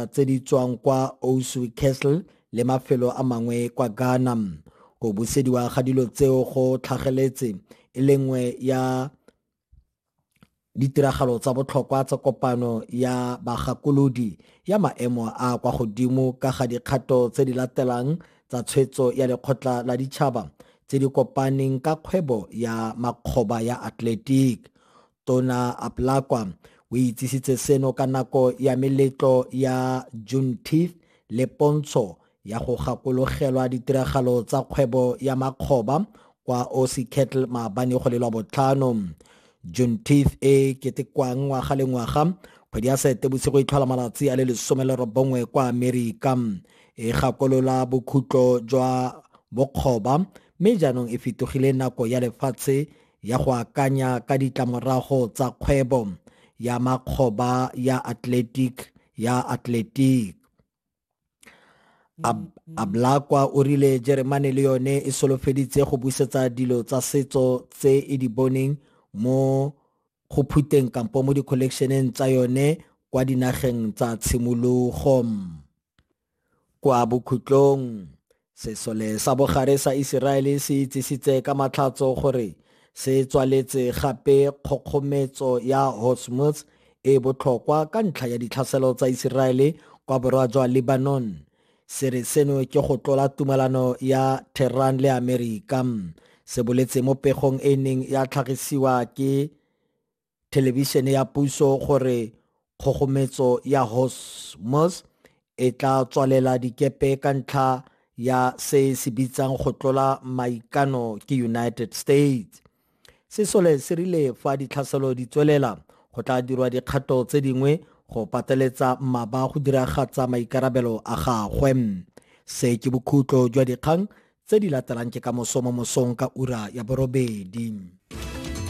tse di tswang kwa Osu Castle le mafelo a mangwe kwa Ghana. Go busediwa ga dilo tseo go tlhageletse e le nngwe ya ditiragalo tsa botlhokwa tsa kopano ya bagakolodi ya maemo a kwa godimo ka ga dikgato tse di latelang tsa tshwetso ya lekgotla la ditšhaba tse di kopaneng ka kgwebo ya makgoba ya atletic Tona Aplakwa o itsisitse seno ka nako ya meletlo ya Juneteenth le pontsho ya go gakologelwa ditiragalo tsa kgwebo ya makgoba kwa OC Kettle maabane go le lwa botlhano. Juneteenth e ketekwang ngwaga le ngwaga kgwedi ya sete bosigo e tlhola malatsi a le lesome le robongwe kwa amerika e gakolola bokhutlo jwa bokgoba mme jaanong e fetogile nako ya lefatshe ya go akanya ka ditlamorago tsa kgwebo ya makgoba ya athletic ya athletic Ab ablakwa o rile jeremane le yone e solofeditse go busetsa dilo tsa setso tse e di boneng mo go phuteng kampo mo di-collectioneng tsa yone kwa dinageng tsa tshimologo Kwa bokhutlong, sesole sa bogare sa Iseraele se itsisitse ka matlhatso gore se tswaletse gape kgokgometso ya Hormuz e botlhokwa ka ntlha ya ditlhaselo tsa Iseraele kwa borwa jwa Lebanon. Se re seno ke go tlola tumalano ya Tehran le Amerika, se boletse mo pegong e neng ya tlhagisiwa ke thelebišene ya puso gore kgogometso ya Hosmos e tla tswalela dikepe ka ntlha ya se se bitsang go tlola maikano ke United States. Sesole se rile fa ditlhaselo di tswelela go tla dirwa dikgato tse dingwe go pateletsa mmaba go diragatsa maikarabelo a gagwe. Se ke bokhutlo jwa dikgang tse di latelang ke ka moso mo mosong ka ura ya borobedi.